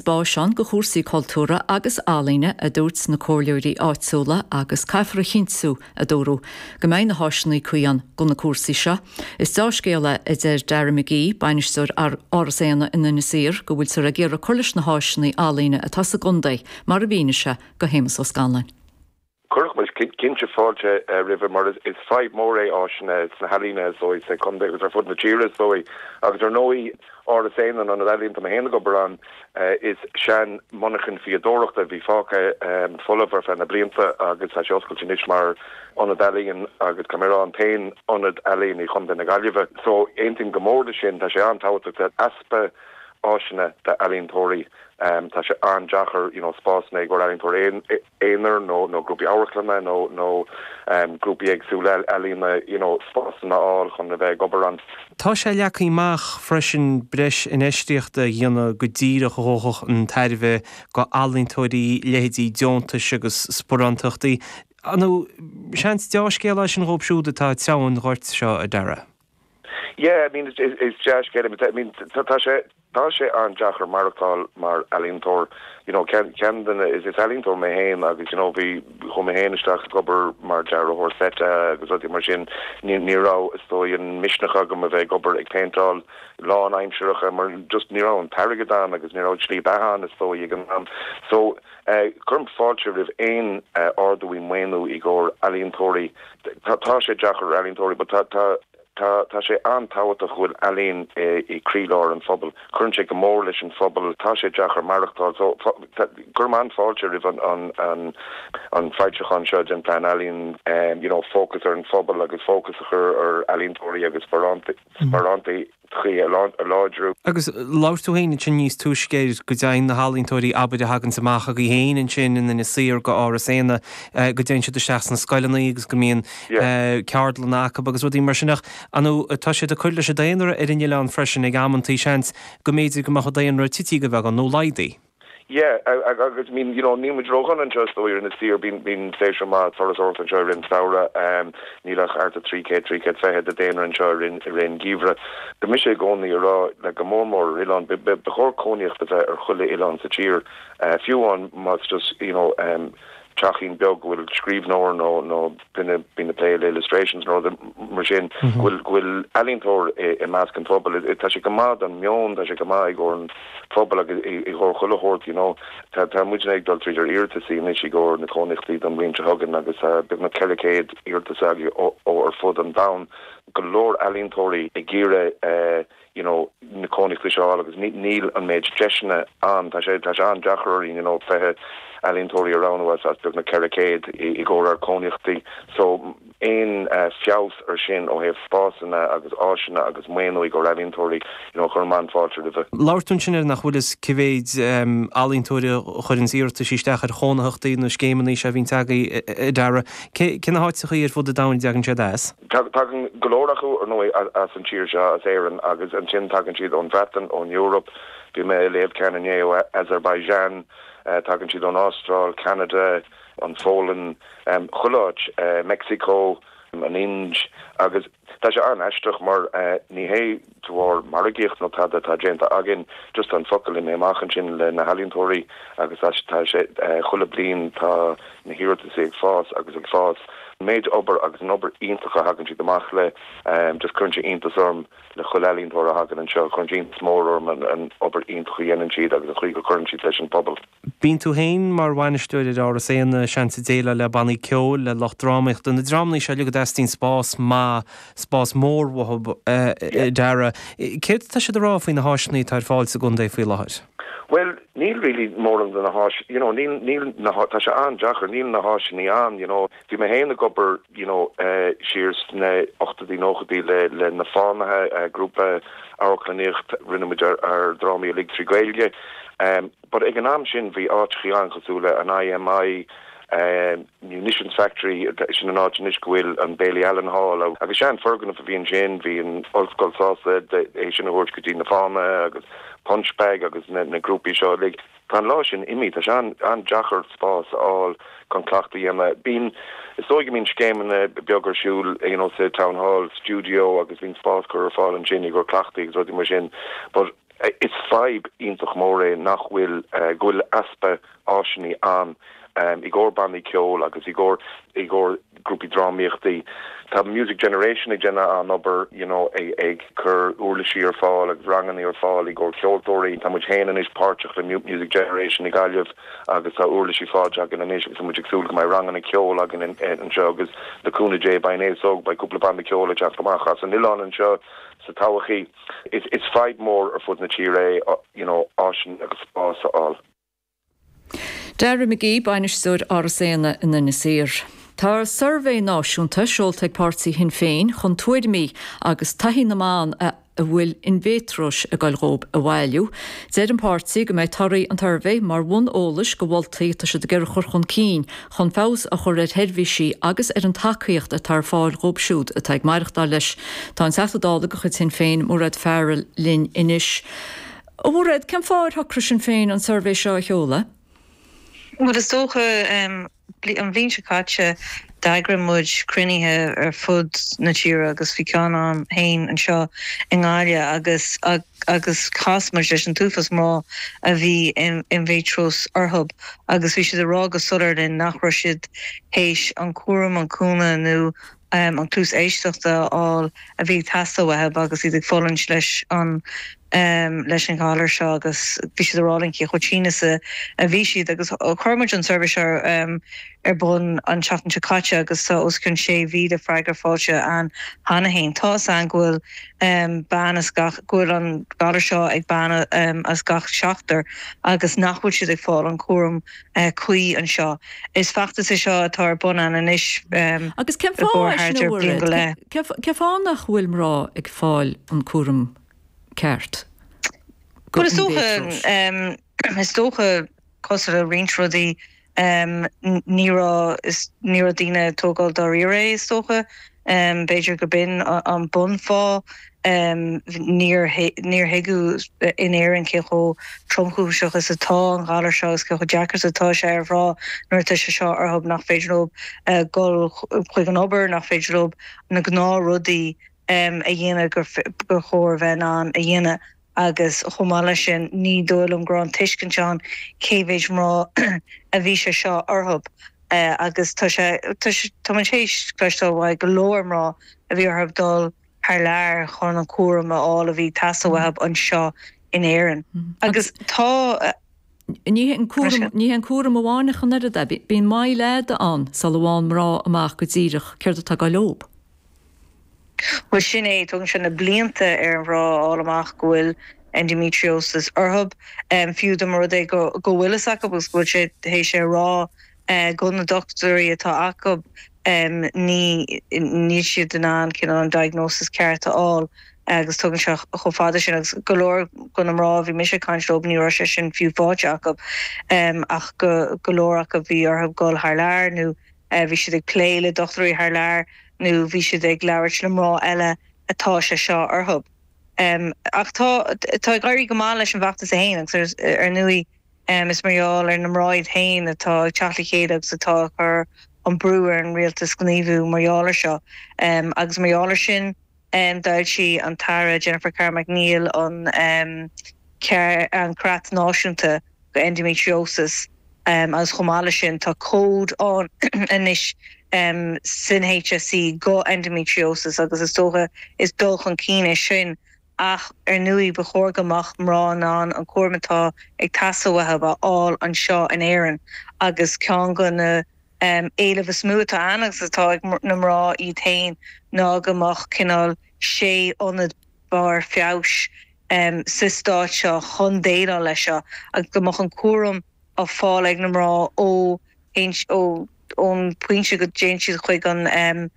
Spásanna do chúrsaí cultúir agus ealaíne, a dúirt na comhairleoirí áitiúla agus caithfear a chinntiú, a dúradh, go mbeidh na háiseanna cuí ann do na cúrsaí seo. Is deá-scéal é, a deir Dara McGee, bainisteoir Áras Éanna in Inis Oírr, go bhfuiltear ag iarraidh cur leis na háiseanna ealaíne atá sa gcontae, mar a mhínigh sé do Shéamus Ó Scanláin. Chuirfeadh muid cinnte fáilte roimhe mar is fadhb mhór é áiseanna sna healaíona is dóigh, sa chontae agus ar fud na tíre is dóigh. Agus ar ndóigh Áras Éanna, an ionad ealaíon atá mé féin ag obair ann, is sean-mhonarcha fíodóireachta a bhí fágtha folamh ar feadh na blianta agus tá sé oscailte anois mar ionad ealaíon agus tá mé a rá an t-aon ionad ealaíon i gContae na Gaillimhe. So aontaím go mór leis sin, tá sé an-tábhachtach, tá easpa áiseanna d'ealaíontóirí, tá sé an-deacair you know spásanna i gcomhair ealaíontóirí. aonair nó grúpaí amharclainne nó grúpaí éagsúla ealaíne you know spásanna a fháil chun a bheith ag obair ann. Tá sé leagtha amach freisin breis infheistíochta a dhéanamh go díreach a thabharfadh an tairbhe do ealaíontóirí, leithéidí deontais agus sparánachtaí. Seans dea-scéal é sin dhóibh siúd atá ag treabhadh an ghoirt seo, a Dara? Yeah, I mean, is dea-scéal é. I mean, tá sé, tá sé an-deacair maireachtáil mar ealaíontóir. You know, ceann, ceann de na, is ealaíontóir mé féin agus, you know, bhí, chuaigh mé féin isteach ag obair mar dearthóir seit agus rudaí mar sin. Ní, ní raibh, is dóigh, an misneach agam a bheith ag obair ag péinteáil lánaimseartha mar just ní raibh an t-airgead ann agus ní raibh slí beatha ann, is dóigh, ag an am. So, cuirim fáilte roimh aon ardú i maoiniú i gcomhair ealaíontóirí. Tá sé deacair ealaíontóirí but tá tá tá tá sé an-tábhachtach go bhfuil ealaín i i croílár an phobail. Cuireann sé go mór leis an phobal. Tá sé deacair maireachtáil so fá tá cuirim an-fáilte roimh an an an an foilseachán seo den Plean Ealaíon you know fócas ar an phobal agus fócas a chur ar ealaíontóirí agus sparánta chtaí a láidriú. Agus labhair tú féin ansin níos túisce air, go dtéann na healaíontóirí, abair, a thagans amach agaibh féin ansin in Inis Oírr go Áras Éanna, go dtéann siad isteach sna scoileannaí agus go mbíonn ceardlanna acu agus rudaí mar sin. Ach ar ndóigh, tá siad ag cur leis an daonra ar an oileán freisin ag amanntaí, seans, go mb'fhéidir go mbeadh an daonra tite go beagán nó laghdaithe. Yeah, agus I mean, you know, níl muid ró-dhona anseo is dóigh in Inis Oírr, bíonn séasúr maith turasóireachta anseo i rith an samhradh, níl ach thart ar 300, 320 de daonra anseo i rith an geimhreadh. Tá mise i gcónaí ag rá, like, go mór mór ar oileán, ba chóir cónaíocht a bheith ar chuile oileán sa tír, fiú amháin más just, you know, teachín beag go bhfuil scríbhneoir nó duine a bhíonn ag plé le illustrations nó rud mar sin, go bhfuil, go bhfuil ealaíontóir i measc an phobail. Tá sé go maith don meon, tá sé go maith i gcomhair an phobail agus i gcomhair chuile shórt, you know. Tá, tá muidne ag dul tríd ár iarratasaí anois i gcomhair na cónaíochtaí don bhliain seo chugainn agus tá beagnach 400 iarratas againn ó ar fud an domhain, go leor ealaíontóirí ag iarraidh eh. you know na cónaíochtaí seo a fháil agus níl an méid deiseanna ann. Tá sé, tá sé an-deacair orainn, you know, fiche ealaíontóirí a roghnú as, as beagnach ceithre céad i, i gcomhair ár gcónaíochtaí. So, aon eh, feabhas ar sin ó thaobh spásanna agus áiseanna agus maoiniú i gcomhair ealaíontóirí, you know, chuirfinn an-fáilte roimhe. Labhair tú ansin ar, nach bhfuil a fhios cé mhéid ehm, ealaíontóirí a chuireanns iarratais isteach ar chónaitheachtaí nó scéimeanna seo a bhíonns agaí, eh, eh, a Dara. Cé, cé na háiteachaí ar fud an domhain a dtagann siad as? Tagann go leor acu, ar ndóigh, as an tír seo, as Éirinn, agus ansin tagann siad ón Bhreatain, ón Eoraip, bhí mé ag léamh ceann inné ó Azerbaijan, tagann siad ón Astráil, Ceanada, an Fhionlainn, chuile áit, Meicsiceo, an Ind, agus tá sé an-aisteach mar ní hé de bharr margaíocht nó tada atá déanta againn just an focal imithe amach ansin le na healaíontóirí agus tá sé chuile bliain tá na hiarratais ag fás agus ag fás an méid obair agus an obair iontach a thagann siad amach le just cuireann sé iontas orm le chuile ealaíontóir a thagann anseo cuireann sé iontas mór orm an obair iontach a dhéanann siad agus an chaoi go cuireann siad leis an pobal. Bíonn tú féin mar bhainisteoir ar Áras Éanna, seans ag déileáil le bannaí ceoil, le lucht drámaíochta, na dreamannaí seo uilig a dteastaíonn spás maith, spás mór uathu, a Dara. Céard atá siad ag rá faoi na háiseanna atá ar fáil sa gcontae faoi láthair? Bhuel, níl really mórán de na háis, you know, níl, níl na há, tá sé an-deacair, níl na háiseannaí ann, you know. Bhí mé féin ag obair, you know, siar sna hochtóidí, nóchaidí le, le Na Fánaithe, grúpa amharclannaíocht, rinne muid ár, ár drámaí uilig trí Ghaeilge. But ag an am sin bhí áiteachaí ann cosúil le an IMI, Munitions Factory, sin an áit anois go bhfuil an Bailey Allen Hall ann, agus sean foirgnimh a bhí ansin, bhí an Ollscoil sásta é sin a thabhairt go dtí na fánaithe agus Punchbag agus na grúpaí seo uilig. Tá an lá sin imithe, tá sé an-deacair spás a fháil chun cleachtadh a dhéanamh. Bíonn, is dóigh go mbíonn scéimeanna beag ar siúil you know sa Town Hall, studio agus bíonn spás curtha ar fáil ansin i gcomhair cleachtaí agus rudaí mar sin but, Is fadhb iontach mór é nach bhfuil, go bhfuil easpa áiseanna ann i gcomhair bannaí ceoil agus i gcomhair grúpaí drámaíochtaí. Tá Music Generation ag déanamh an-obair, you know, ag cur uirlisí ar fáil agus ranganna ar fáil i gcomhair ceoltóirí. Tá muid féin anois páirteach le Music Generation i Gaillimh agus tá uirlisí faighte againn anois agus tá muid ag súil go mbeidh ranganna ceoil againn anseo agus le cúnamh Dé, beidh, b'fhéidir go, beidh cúpla banna ceoil ag teacht amach as an oileán anseo sa todhchaí. Is fadhb mhór ar fud na tíre é you know áiseanna agus spás a fháil. Dara McGee, Bainisteoir Áras Éanna in Inis Oírr. Tá suirbhé náisiúnta seolta ag páirtí Shinn Féin chun tuairimí agus taithí na mban a a bhfuil inmhéatróis ag goil dhóibh a bhailiú. Deir an páirtí go mbeidh torthaí an tsuirbhé mar bhun eolais do mholtaí atá siad ag iarraidh a chur chun cinn chun feabhas a chur ar sheirbhísí agus ar an tacaíocht atá ar fáil dhóibh siúd atá ag maireachtáil leis. Tá an Teachta Dála de chuid Shinn Féin, Mairéad Farrell, linn anois. A Mhairéad, cén fáth ar shocraigh Sinn Féin an suirbhé seo a sheoladh? Bhuel, is dócha, an bhliain seo caite, d'eagraigh muid cruinnithe ar fud na tíre agus bhí ceann agam féin anseo i nGaillimh agus, agus chas muid leis an t-uafás mná a bhí endometriosis orthu agus bhí siad ag rá go soiléir linn nach raibh siad théis an cúram, an cúnamh nó an cluas éisteachta a fháil a bhí ag teastáil uathu agus iad ag fulaingt leis an leis an ghalar seo agus bhí siad ag rá linn cé chomh tinn is a bhí siad agus chuir muid an suirbhé seo ar bun an tseachtain seo caite agus tá os cionn 6,000 freagra faighte againn cheana féin. Tá's againn go bhfuil. bean as gach, go bhfuil an galar seo ag bean as gach seachtar agus nach bhfuil siad ag fáil an chúram cuí anseo. Is feachtas é seo atá ar bun againn anois Agus cén fáth, a Mhairéad, cén fáth nach bhfuil mná ag fáil an cúram ceart go Bhuel is dócha, is dócha, cosúil le roinnt rudaí. Ní raibh, is ní raibh daoine ag tógáil dáiríre é, is dócha. B'fhéidir gurb in an bunfáth. Níor, níor tuigeadh in Éirinn cé chomh tromchúiseach is atá an galar seo agus cé chomh deacair is atá sé ar mhná nuair atá sé seo orthub, nach féidir leob dhul chuig an obair, nach féidir leob na gnáthrudaí a dhéanamh gur, gur chóir dóibh a bheith in ann a dhéanamh. agus chomh maith leis sin, ní dóigh liom go raibh an tuiscint ann cé mhéid mná a bhí sé seo orthu, agus tá sé, tá muid théis cloisteáil ó go leor mná a bhí orthu dul thar lear chun an cúram a fháil a bhí ag teastáil uathu anseo in Éirinn. Agus tá. Ní hé an cúram amháin ach an oiread é, bíonn moill fhada ann sula bhfaigheann mná amach go díreach céard atá ag gabháil dóibh. Bhuel, sin é. Tógann sé na blianta ar mhná a fháil amach go bhfuil endometriosis orthu, fiú dá mba rud é go bhfuil fhios acu agus go bhfuil siad théis é a rá go na dochtúirí atá acu, níl siad in ann cineál an diagnosis ceart a fháil agus tógann sé chomh fada sin agus go leor go na mná a bhí mise ag caint leo, ní raibh sé sin fiú faighte acu ach go leor acu bhí orthu dul thar lear nó. Bhí siad ag plé le dochtúirí thar lear nó bhí siad ag labhairt le mná eile atá sé seo orthu. Ach tá ag éirí go maith leis an bhfeachtas é féin agus ar ndóigh is mar gheall ar na mná iad féin atá ag teacht le chéile agus atá ag cur an brú ar an rialtas gníomhú mar gheall air seo agus mar gheall air sin. D'fhoilsigh an tAire Jennifer Carroll MacNeill an Creat Náisiúnta do Endometriosis agus chomh maith leis sin tá cód ann anois san HSE do Endometriosis agus is dócha is dul chun cinn é sin ach ar ndóigh ba chóir go mbeadh mná in ann an cúram atá ag teastáil uathu a fháil anseo in Éirinn agus ceann de na éilimh is mó atá ann, agus atá ag na mná iad féin, ná go mbeadh cineál sé ionad barr feabhais sa stát seo chun déileáil leis seo, agus go mbeadh an cúram á fáil ag na mná ó ón bpointe go dtéann siad chuig an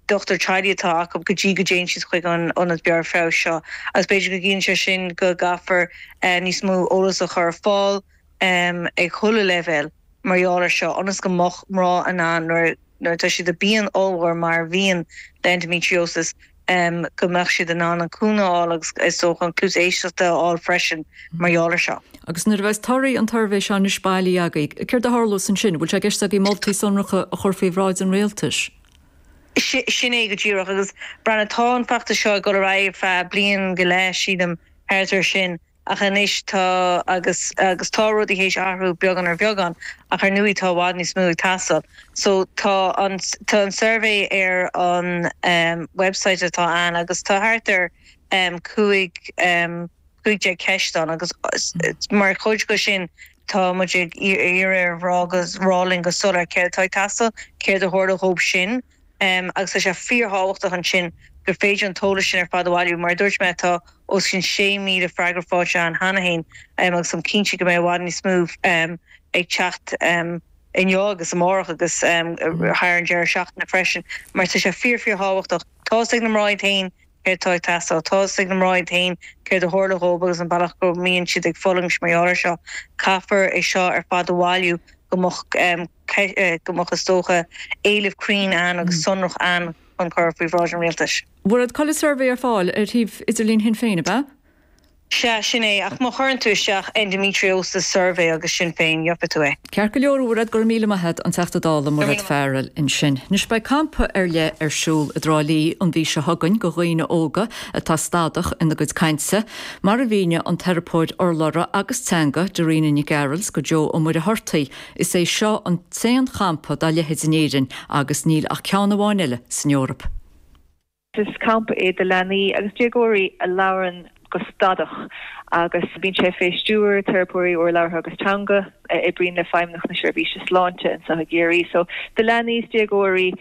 dochtúir teaghlaigh atá acu go dtí go dtéann siad chuig an ionad barr feabhais seo. Agus b'fhéidir go gciallaíonn sé sin go gcaithfear níos mó eolas a chur ar fáil, ag chuile leibhéal mar gheall air seo, ionas go mbeadh mná in ann, nuair atá siad i bpian ollmhór mar a bhíonn le endometriosis, go mbeadh siad in ann an cúnamh a fháil agus, is dócha, cluas éisteachta a fháil freisin mar gheall air seo. Agus nuair a bheas torthaí an tsuirbhé seo anois bailithe agaibh, céard a tharlós ansin? Bhfuil sé i gceist agaibh moltaí sonracha a chur faoi bhráid an rialtais? Sin é go díreach. Agus, breathnaigh, tá an feachtas seo ag dul ar aghaidh ar feadh bliain go leith, sílim, thart air sin. Ach anois tá, agus, agus tá rudaí théis athrú beagán ar bheagán, ach ar ndóigh tá i bhfad níos mó ag teastáil. So tá an, tá an suirbhé ar an website atá ann agus tá thart ar chúig, cúig déag ceist ann agus mar chuid de sin tá muid ag iarraidh ar mhná a rá linn go soiléir céard atá ag teastáil, céard a tharla dhóibhsean agus tá sé fíorthábhachtach ansin gur féidir an t-eolas sin ar fad a bhailiú. Mar a dúirt mé, tá os cionn 6,000 freagra faighte againn cheana féin agus táim cinnte go mbeidh i bhfad níos mó ag teacht inniu agus amárach agus thar an deireadh seachtaine freisin, mar tá sé fíor, fíorthábhachtach. Tá's ag na mná iad féin céard atá ag teastáil. Tá's ag na mná iad féin céard a tharla dhóibh agus an bealach go mbíonn siad ag fulaingt mar gheall air seo. Caithfear é seo ar fad a bhailiú go mbeadh. go mbeadh, is dócha, éileamh cruinn ann agus sonrach ann chun cur faoi bhráid an Rialtais. A Mhairéad, tá an suirbhé ar fáil ar shuíomh idirlín Shinn Féin, ab ea? Sea, sin é. Ach má chuireann tú isteach 'Endometriosis Survey' agus 'Sinn Féin', gheobhaidh tú é. Ceart go leor, a Mhairéad, go raibh míle maith agat, an Teachta Dála Mairéad Farrell ansin. Anois, beidh campa ar leith ar siúl i dTrá Lí an mhí seo chugainn do dhaoine óga atá stadach ina gcuid cainte, mar a mhínigh an teiripeoir urlabhra agus teanga Darina Nic Gearailt do Joe Ó Muircheartaigh. Is é seo an t-aon champa dá leithéid in Éirinn agus níl ach ceann amháin eile san Eoraip. Is campa é do leanaí agus déagóirí a labhrann go stadach agus bíonn sé fé stiúir teiripeoirí urlabhartha agus teanga a oibríonn le Feidhmeannacht na Seirbhíse Sláinte anseo i gCiarraí. So do leanaí is déagóirí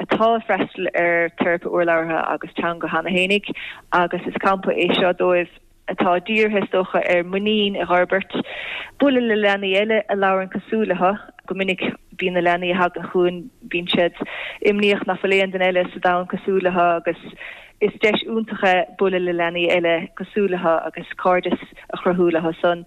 atá ag freastal ar teiripe urlabhartha agus teanga cheana fhéinig agus is campa é seo dóibh. atá dírithe, is dócha, ar mhuinín a dh'fhorbairt, bualadh le leanaí eile a labhrann cosúil leo. Go minic, bíonn na leanaí a thagann chugainn, bíonn siad imníoch nach bhfuil aon duine eile sa domhan cosúil leo agus is deis iontach é bualadh le leanaí eile cosúil leo agus cairdeas a chruthú leo-san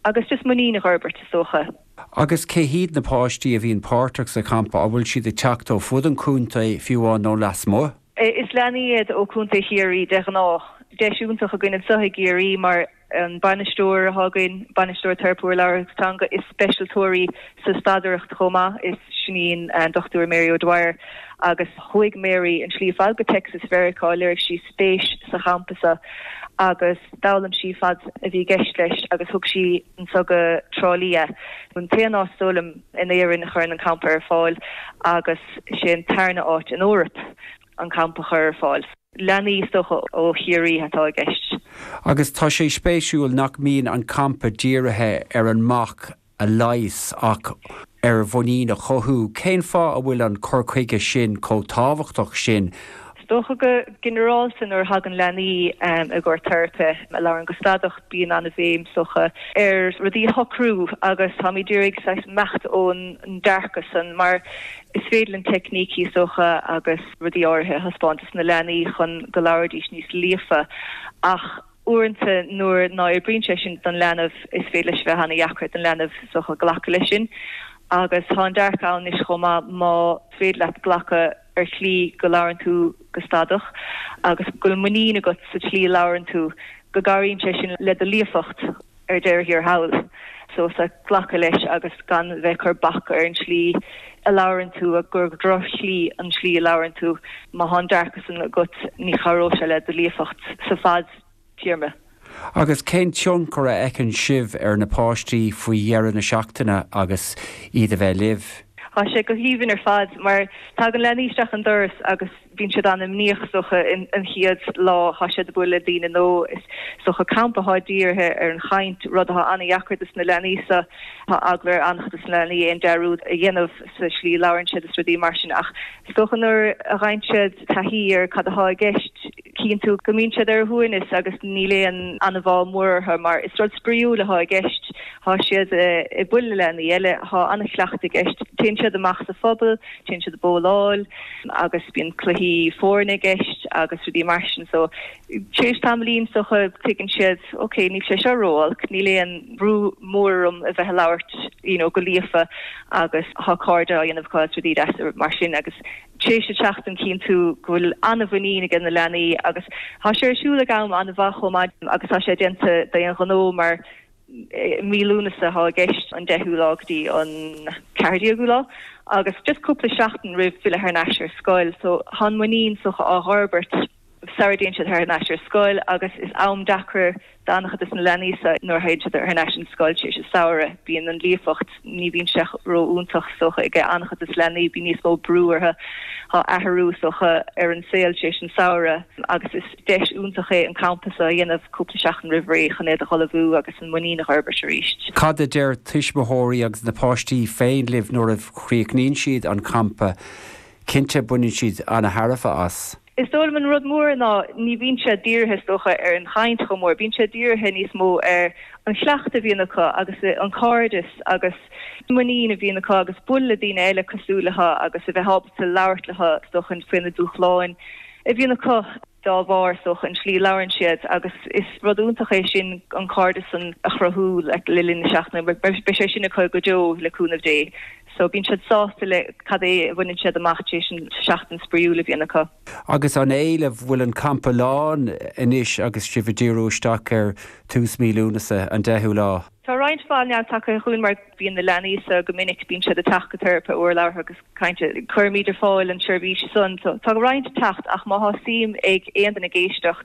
agus just muinín a dh'fhorbairt, is dócha. Agus cé hiad na páistí a bhíonn páirteach sa champa? An bhfuil siad ag teacht ó ar fud an chontae, fiú amháin, nó lasmuigh? Is leanaí iad ó Chontae Chiarraí de ghnáth. Tá deis iontach againn anseo i gCiarraí mar an bainisteoir atá againn, Bainisteoir Teiripe Urlabhra is Teanga is speisialtóir í sa stadaireacht chomh maith, is sin í an Dr Mary O'Dwyer agus chuaigh Mary an tslí ar fad go Texas i Meiriceá, léirigh sí spéis sa champa seo agus d'fhoghlaim sí cad a bhí i gceist leis agus thug sí anseo go Trá Lí é. An t-aon áit is dóigh liom in Éirinn a chuireann an campa ar fáil agus. sin an tarna áit san Eoraip an campa a chur ar fáil. Leanaí is dócha ó Chiarraí atá i gceist. Agus tá sé spéisiúil nach mbíonn an campa dírithe ar an mbac a leigheas ach ar mhuinín a chothú. Cén fáth a bhfuil an cur chuige sin chomh tábhachtach sin? Is dócha go ginearálta nuair a thagann leanaí i gcomhair teiripe a labhrann go stadach bíonn an-bhéim is dócha ar rudaí a shocrú agus táimid ag iarraidh saghas imeacht ón dearcadh san mar is féidir linn teicnící is dócha agus rudaí áirithe a thaispeáint dos na leanaí chun go labhraídís níos líofa ach uaireanta nuair ná oibríonn sé sin don leanbh is féidir leis a bheith an-dheacair don leanbh is dócha glacadh leis sin agus tá an dearcadh ann anois chomh maith má féidir leat glacadh ar shlí go labhrann tú go stadach agus go bhfuil muinín agat sa tslí a labhrann tú, go gcabhraíonn sé sin le do líofacht ar deireadh thiar thall. So sea, glacadh leis agus gan a bheith ag cur bac ar an tslí a labhrann tú, gur droch-shlí an tslí a labhrann tú, má thá an dearcadh san agat, ní chabhróidh sé le do líofacht sa bhfad. téarma. Agus cén tionchar a fheiceann sibh ar na páistí faoi dheireadh na seachtaine agus iad a bheith libh? Tá sé go haoibhinn ar fad mar tagann leanaí isteach an doras agus bíonn siad an-imníoch is dócha an chéad lá atá siad ag bualadh le daoine nua. Is dócha campa atá dírithe ar an chaint, rud atá an-deacair dos na leanaí seo. Tá eagla ar an-chuid dos na leanaí aon dearúd a dhéanamh sa slí a labhrann siad is rudaí mar sin ach is dócha nuair a fhaigheann siad taithí ar cad atá i gceist, chinntiú go mbíonn siad ar a shuaimhneas agus níl aon anbhá mhór orthu mar is rud spraíúil atá i gceist, tá siad ag bualadh le leanaí eile, tá an-chuileachta i gceist, téann siad amach sa phuball, téann siad ag bowláil agus bíonn cluichí foirne i gceist agus rudaí mar sin so tar éis tamaillín is dócha tuigeann siad ok, níl sé seo ró-olc, níl aon bhrú mór orm a bheith ag labhairt you know go líofa agus tá cairde á dhéanamh acu agus rudaí deasa mar sin agus éis an seachtain cinntiú go bhfuil an-mhuinín ag na leanaí agus tá sé ar siúl ag am an-mhaith chomh maith agus tá sé déanta d'aon ghnó mar mí Lúnasa atá i gceist, an deichiú lá go dtí an ceathair déagú lá agus just cúpla seachtain roimh filleadh thar n-ais ar scoil so chun muinín is dócha a dh'fhorbairt. sara dtéann siad thar n-ais ar scoil agus is am deacair d'an-chuid des na leanaí seo nuair a théann siad thar n-ais an scoil, tar éis an samhraidh, bíonn an líofacht, ní bhíonn sé ró-iontach is dócha ag an-chuid des na leanaí, bíonn níos mó brú orthu, tá athrú is dócha ar an saol tar éis an samhraidh agus is deis iontach é an campa seo a dhéanamh cúpla seachtain roimh ré chun iad a dh'ullmhú agus an muinín a dh'fhorbairt arís. Cad a deir tuismitheoirí agus na páistí féin libh nuair a chríochnaíonn siad an campa? Cinnte baineann siad an-tairbhe as. Is dóigh liom an rud mór ná ní bhíonn siad dírithe, is dócha, ar an chaint chomh mór. Bíonn siad dírithe níos mó ar an chuileachta a bhíonn acu agus an cairdeas agus muinín a bhíonn acu agus bualadh le daoine eile cosúil leo agus a bheith ábalta labhairt leo, is dócha, faoi na dúshláin a bhíonn acu dá bharr, is dócha, an tslí a labhrann siad agus is rud iontach é sin an cairdeas san a chruthú le linn na seachtaine. Beidh sé sin acu go deo le cúnamh Dé. So bíonn siad sásta le cad é a bhaineann siad amach tar éis an seachtain spraíúil a bhíonn acu. Agus an éileamh, bhfuil an campa lán anois agus sibh ag díriú isteach ar tús mí Lúnasa, an deichiú lá? Tá roinnt mhaith leanbh tagtha chugainn mar bíonn na leanaí so go minic, bíonn siad ag teacht go teiripe urlabhra agus cainte, cuirimid ar fáil an tseirbhís san so tá roinnt ag teacht ach má tá suim ag aon duine ag éisteacht,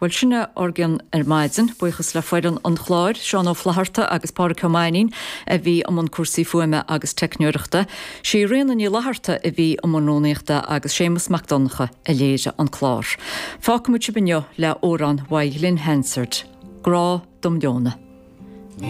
Bhuel, sin é ár gcion ar maidin. Buíochas le foireann an chláir, Seán Ó Flatharta agus Pádraic Ó Mainín a bhí i mbun cúrsaí fuaime agus teicneoireachta. Sí Ríona Ní Fhlatharta a bhí i mbun rúnaíochta agus Séamus Mac Donncha a léirigh an clár. Fágfaimid sibh inniu le amhrán uaidh Ghlen Hansard, Grá dom Leonadh.